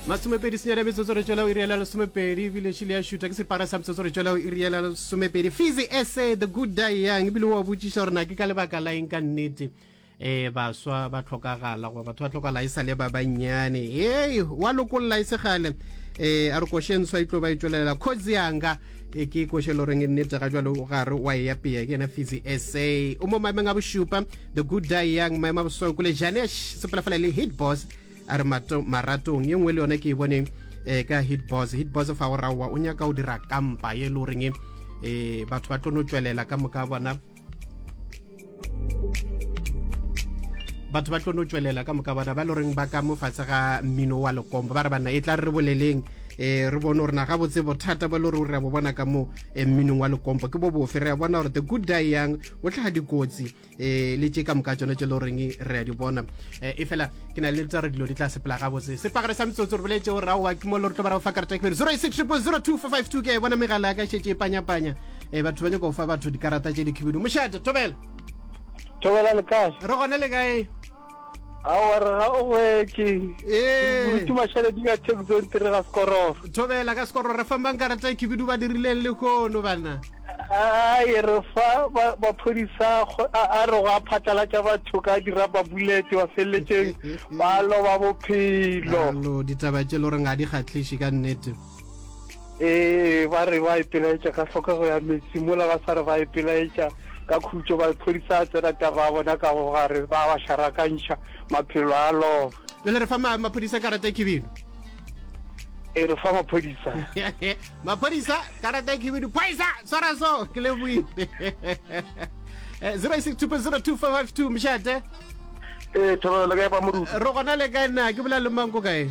masomepedi senyane metsotso re tšwela o iriela lesomepedi ebile šile ya šuta ke separa sa metsotso re tšwela o iriela lesomepedi fizi ese the good die young ebile wa botšiša gore na ke ka lebaka la eng ka nnete e baswa ba tlhokagala goba batho ba tlhokagala e sa le ba bannyane ee wa lokolla e segale um a re košenswa e tlo ba e tšwelela kgozi yanga e ke koše lo reng e nnete ga jalo ga re wa e apea ke ena fisi sa o mo maemeng a bošupa the good die young maemo a bosoko le jane sepela fela le hit boss a re maratong ye nngwe le yone ke e bone um ka hit boss hit boss fa o raowa o nyaka o dira kampa ye le goreng um batho ba tlo no tswelela ka moka bona batho ba tlo no tswelela ka moka bona ba le goreng ba ka mo fatshe ga mmino wa lekombo ba re banna e tla re re boleleng um re bone gore na ga botse bothata ba le gore o re ya bo bona ka mo eh, mminong wa lekombo ke bo bofe re ya bona gore the good die yang o tlhaga dikotsi um le tše ka moka tsone tse le goreng re ya di bona um e fela ke na le tsa re dilo di tla sepela ga botse sepagare sa metsotso re boletse gore aowa ke mo le re tlo ba ra go fa karata ke pele zero six triple zero two four five two ke bona megala ya ka šetse e panyapanya e batho ba nyaka go fa batho dikarata tše dikhibidu mošate thobela thobela le kae re gone le kae aowa re ga o gwetse ee mašaledi ka texon tere ga sekororo thobela ka sekororo re fambang karata e khibidu ba dirileng le kono bana ae re fa maphodisa a re go a phatlalatša batho ka diraba bullet ba feleletseng ba loba bophelo ditaba tše le gore ga di kgatlhiše ka nnete Ee, ba re ba ipelaetša ka hlokego ya metsi, mola ba sa re ba ipelaetša ka khutšo, maphodisa a tsena taba ya bona ka go gare, ba ba šarakantšha, maphelo a loba. Bjale re fa ma, maphodisa karata ya khibidu. E re fa maphodisa. maphodisa karata ya khibidu. Phoisa, swara so, ke le buile. 06202552 mšate. Ee, thobelo le kae ba moruti? Re gona le kae na, ke bolela le mang ko kae?